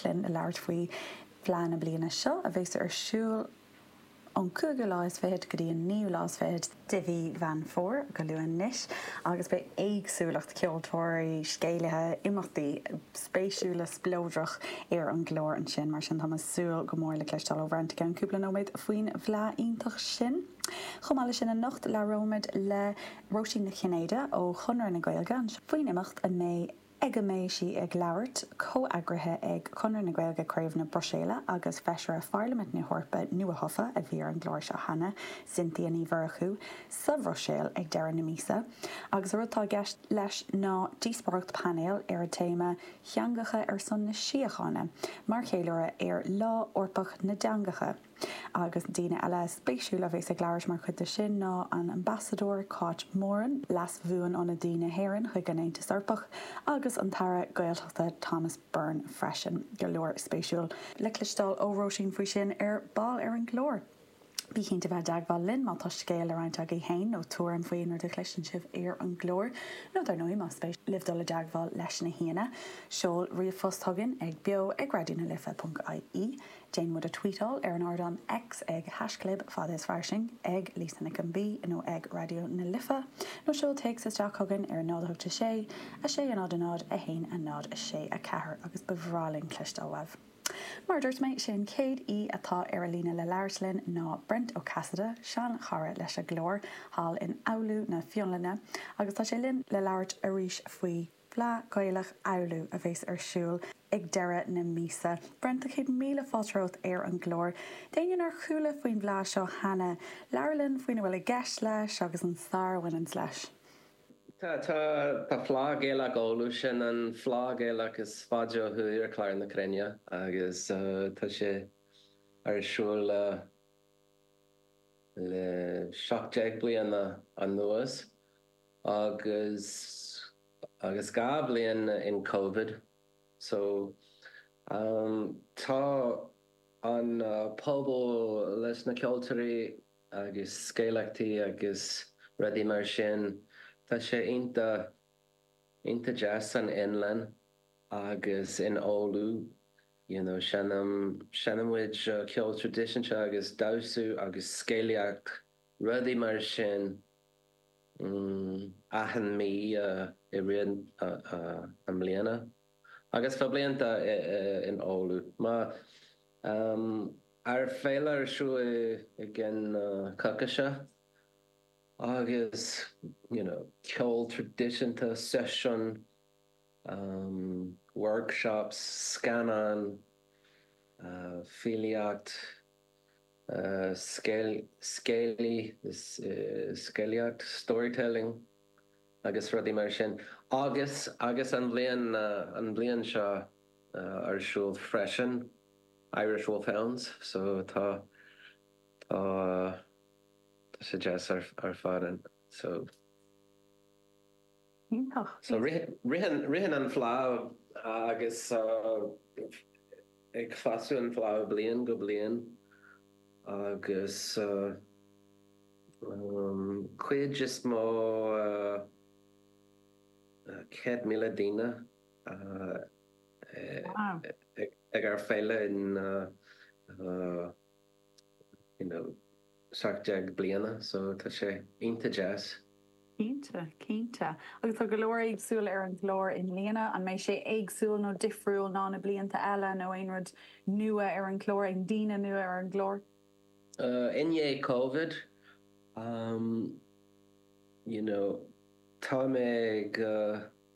linn le labhairt faoi Fleadh na bliana seo a bhéas ar siúl ón cúigiú lá is fichead go dtí an naoú lá is fichead de mhí Mheán Fómhair, go luath anois, agus beidh éagsúlacht ceoltóirí, scéalaithe, imeachtaí spéisiúla spleodrach ar an gclár ansin, mar sin tá mé ag súil go mór le cloisteáil ó Bhrent i gceann cúpla nóiméad faoin bhFleadh iontach sin. Chomh maith le sin anocht labhróimid le Róisín Nic Chinnéide ó Chonradh na Gaeilge anseo faoin imeacht a mbeidh. ag a mbeidh sí ag labhairt, comheagraithe ag Conradh na Gaeilge, Craobh na Bruiséile, agus Feisire Pharlaimint na hEorpa nuathofa, a bhí ar an gclár seo cheana, Cynthia Ní Mhurchú, sa Bhruiséil ag deireadh na míosa, agus an rud atá i gceist leis ná díospóireacht painéil ar an téama 'Theangacha ar son na Síochána', mar cheiliúradh ar Lá Eorpach na dTeangacha. Agus daoine eile spéisiúla a bheas ag labhairt mar chuid de sin ná an Ambasadóir Cáit Moran, Leas Bhuanionadaí na hÉireann chuig an Aontas Eorpach, agus an tAire Gaeltachta Thomas Byrne freisin. Go leor spéisiúil le cloisteáil ó Róisín faoi sin ar ball ar an gclár. Bígí cinnte a bheith i dteagmháil linn má tá scéal le roinnt agaibh féin nó tuairim faoi aon rud a chloiseann sibh ar an gclár. Nó dar ndóigh más spéis libh dul i dteagmháil leis na haíonna, seol ríomhphost chugainn ag beo@radionalife.ie. Déan muid a tvuíteáil ar an ardán X ag haisclib fada is fairsing, ag Lisa Nic an Bhí nó ag Raidió na Life, nó seol téacs isteach chugainn ar 0 8 6 6 0 0 0 1 a 0 6 4 agus ba bhreá linn cloisteáil uaibh. Mar a dúirt mé, sé an chéad aoi atá ar an líne le labhairt linn ná Brent Ó Casaide, seanchara leis an gclár thall in Oulu na Fionlainne, agus tá sé linn le labhairt arís faoi. Fleadh Gaelach Oulu a bheas ar siúl ag deireadh na míosa. Brent, céad míle fáilte romhat ar an gclár. D'éinne nár chuala faoin bhfleadh seo cheana, labhair linn faoina bhfuil i gceist leis agus an stair a bhaineanns leis. Tá Fleadh Gaelach Oulu, sin an fleadh Gaelach is faide ó thuaidh ar chlár na cruinne agus tá sé ar siúl le seacht deag bliana anuas. Agus agus dhá bhliain in Covid so tá an pobal leis na ceoltóirí agus scéalaíochtaí agus rudaí mar sin, tá sé iontach, iontach deas san Fhionlainn agus in Oulu, you know, seinm, seinm muid ceol traidisiúnta agus damhsa agus scéalaíocht, rudaí mar sin. achan mí i rith na mbliana agus fá bhlianta in Oulu má ár féile ar siúl i gceann na coicíse agus you know ceol traidisiúnta, seisiúin, workshops, scannáin, filíocht. scéalaí, scéalaíocht, storytelling, agus rudaí mar sin. Agus agus an bhliain an bhliain seo ar siúl freisin Irish Wolfhounds so tá tá tá sé deas ar fad anso. Iontach. So ritheann an fleá agus tá ag fás an fleá ó bliain go bliain agus an cuid is mó 100,000 daoine ag ár féile in you know, seacht déag bliana so tá sé iontach deas. Cinnte, cinnte. Agus tá go leor éagsúil ar an gclár i mbliana. An mbeidh sé éagsúil nó difriúil ná na blianta eile nó aon rud nua ar an gclár, aon daoine nua ar an gclár? Uh, I ndiaidh Covid, um, you know, tá mé go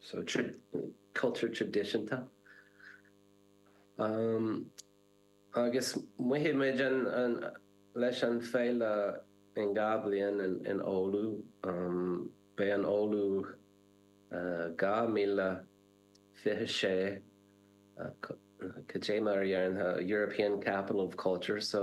so cultúr traidisiúnta ann agus beidh muid ann leis an féile in dhá bhliain in in Oulu beidh an Oulu 2026 cad é mar a déarfá European Capital of Culture so